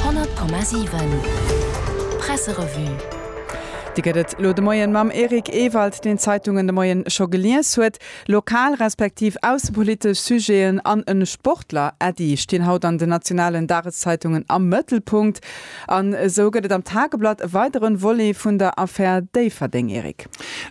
100,7 Presserevue Dir gëtt et elo de Moien mam Eric Ewald, deen d'Zeitungen de Moien scho gelies huet. Lokal respektiv aussepolitesch Sujeten an e Sportler, Äddi, stinn haut an den nationalen Dageszeitungen am Mëttelpunkt. An esou gëtt et am Tageblatt e weideren Volet vun der Affär Déifferdeng, Eric.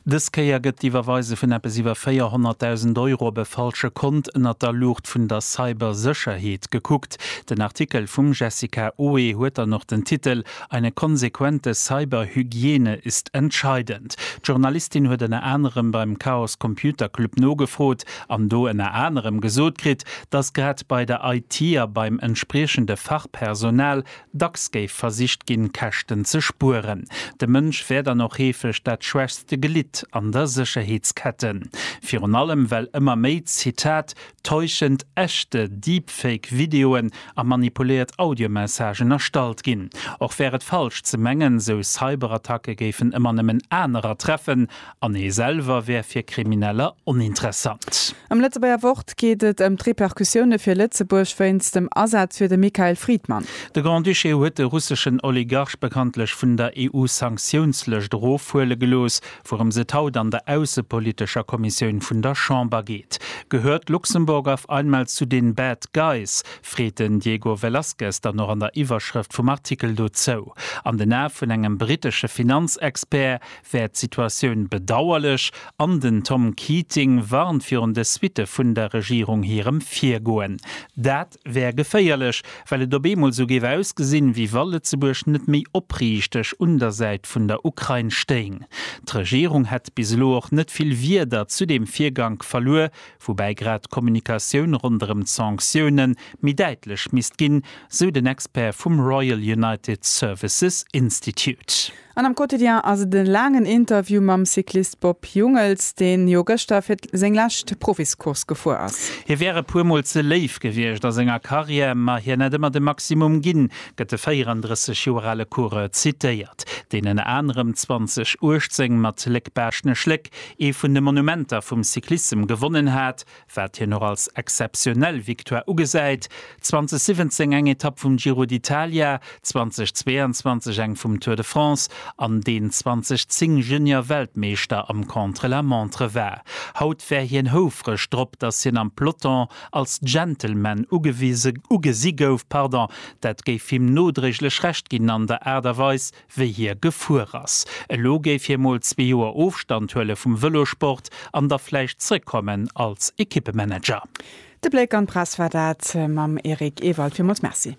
Dës Kéier gëtt d'Iwwerweise vun eppes iwwer 400.000 Euro op e falsche Kont ënnert der Luucht vun der Cybersécherheet gekuckt. Den Artikel vum Jessica Oe huet dann och den Titel Eine konsequente Cyberhygiene ist entscheidend. D'Journalistin huet ënner anerem beim Chaos Computer Club nogefrot an do ënner anerem gesot kritt, datt grad bei der IT a beim entspriechende Fachpersonal Dacks géif versicht ginn, Käschten ze spueren. De Mënsch wär dann och heefeg dat schwächst Glidd an der Sécherheetskette. Virun allem well ëmmer méi, Zitat, täuschend echte Deepfake-Videoen a manipuléiert Audiomessagen erstallt ginn. Och wär et falsch ze mengen, sou Cyberattacke géifen ëmmer nëmmen anerer treffen an ee selwer wär fir Krimineller oninteressant. Am Lëtzebuerger Wort geet et ëm d'Repercussioune fir Lëtzebuerg wéinst dem Asaz fir de Mikhail Fridman. De Grand-Duché huet de russeschen Oligarch bekanntlech vun der EU-Sanktiounslëscht erofhuele gelooss. Wourëms et haut an der aussepolitescher Kommissioun vun der Chamber geet, Gehört Luxemburg auf einmal zu den bad guys? freet den Diego Velazquez dann och an der Iwwerschrëft vum Artikel dozou. An den Ae vun engem brittesche Finanzexpert wär d'Situatioun bedauerlech an den Tom Keating warnt virun de Suitte vun der Regierung hirem Virgoen. Dat wär geféierlech, well et op eemol sou géif ausgesinn, wéi wa Lëtzebuerg net méi opriichteg un der Säit vun der Ukrain stéing. D'Regierung hätt bis elo och net vill Wieder zu deem Virgank verluer, woubäi grad d'Kommunikatioun ronderëm d'Sanktioune méi däitlech misst ginn, sou den Expert vum Royal United Services Institute. An am Quotidien ass et e laangen Interview mam Cyclist Bob Jungels, deen jo gëschter fir seng lescht Profiscourse gefuer ass. Hie wär e puer Mol ze léif gewiescht a senger Karriär, ma hien hätt ëmmer de Maximum ginn, gëtt de 34 Joer ale Coureur zitéiert, deen ënner anerem 2018 mat Léck-Baaschtnech-Léck ee vun de Monumenter vum Cyclissem gewonnen hat, wat hien och als exzeptionell Victoire ugesäit, 2017 eng Etapp vum Giro d'Italia, 2022 eng vum Tour de France an deen 2010 Junior-Weltmeeschter am Contre-la-Montre war. Haut wär hien houfreg drop, datt hien am Peloton als Gentleman ugesi gouf, dat géif him nodréiglech Recht ginn an der Aart a Weis, wéi hie gefuer ass. Elo géif hie mol zwee Joer Ofstand huele vum Vëlosport an da vläicht zrëckkommen als Ekippemanager. De Bléck an d'Press war dat mam Eric Ewald. Villmools Merci.